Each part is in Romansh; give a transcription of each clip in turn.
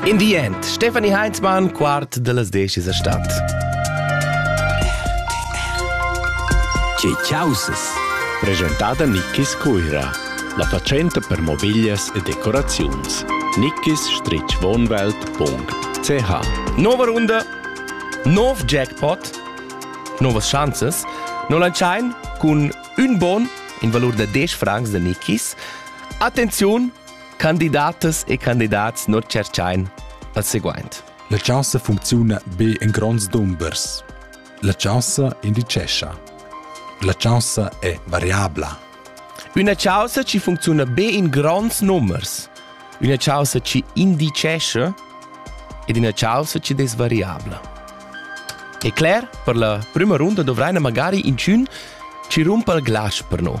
In di end Stefanie Heinzmann, quart dellas decis a stad. Tge chausas? Presentada Nickis Cuira, la fatschenta per mobiglias e decoraziuns. nickis-wohnwelt.ch Nova runda, nov jackpot, novas chanzas. No lantschain cun ün bon in valur da 10 francs da Nickis. Attenziun, Candidatas e candidats non cerchain al seguaint. La chaussa funcziuna be in gronds dumbers. La chaussa indicescha. La chaussa è variabla. Üna chaussa ci funcziona be in gronds numbers. Üna chaussa ci indicesce ed una chaussa ci desvariabla. E cler, per la prima runda dovraina magari inchün ci rumpa il glas per noi.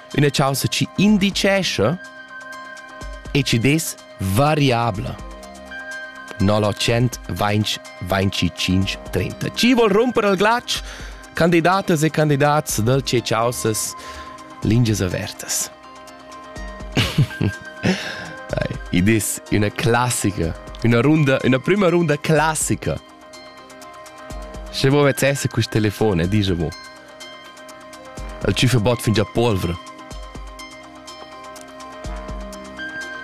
üna chaussa chi indicescha e chi dess variabla. 925 Chi vol rumper al glatsch? Candidatas e candidats da ce chaussas lingias avertas. Id es üna classica, üna runda, üna prüma runda classica Sche mo vezs esser quist telefon e disch mo. El tschüfa bot fingià polvra.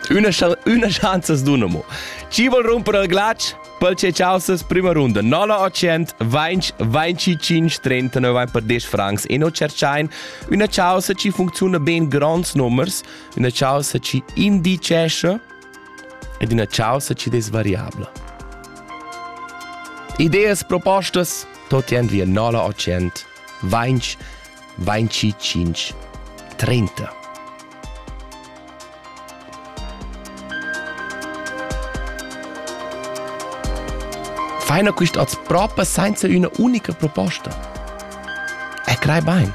Üna, üna schanza as duna mo. Chi vol rumper al glatsch? Pel che chausas prima runda 900 20 25 39 vain per 10 francs e no cerchain üna chausa chi funcziuna ben grands nummers, üna chausa chi indicescha ed ina chaussa chi'd es variabla. Ideas, propostas, tot jend via nola o tschient, vainch, vainci tschinch, trenta. Feiner quist hoz propa sainza üna unica proposta. E crei bain.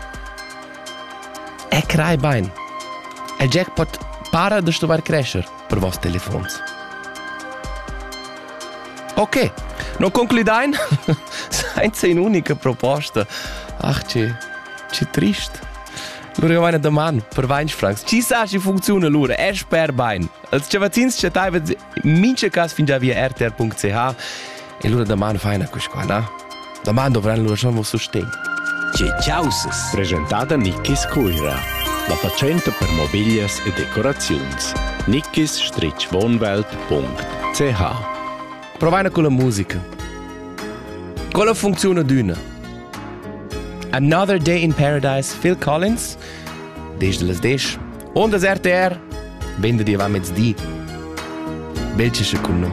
E crai bain, il jackpot para da stuvair crescer per voss telefons. Ok, non concludein senza un'unica proposta. Ach, che, che trist. Lura vaina daman per 20 francs. Ci sa chi funcziona lura? E sper bain. Als chavazins chattaivan in mincha cas fin già via rtr.ch E lura daman faina quisquà, na? Daman dovran lura schon vos sustegn. Tge chausas! Presentada Nickis Cuira. La fatschenta per mobiglias e decoraziuns. nickis-wohnwelt.ch Provaina con la musica. Con la funziona d'una? Another Day in Paradise, Phil Collins, desde las 10, ondas RTR, vende di avant mezdi. Belcesce con noi.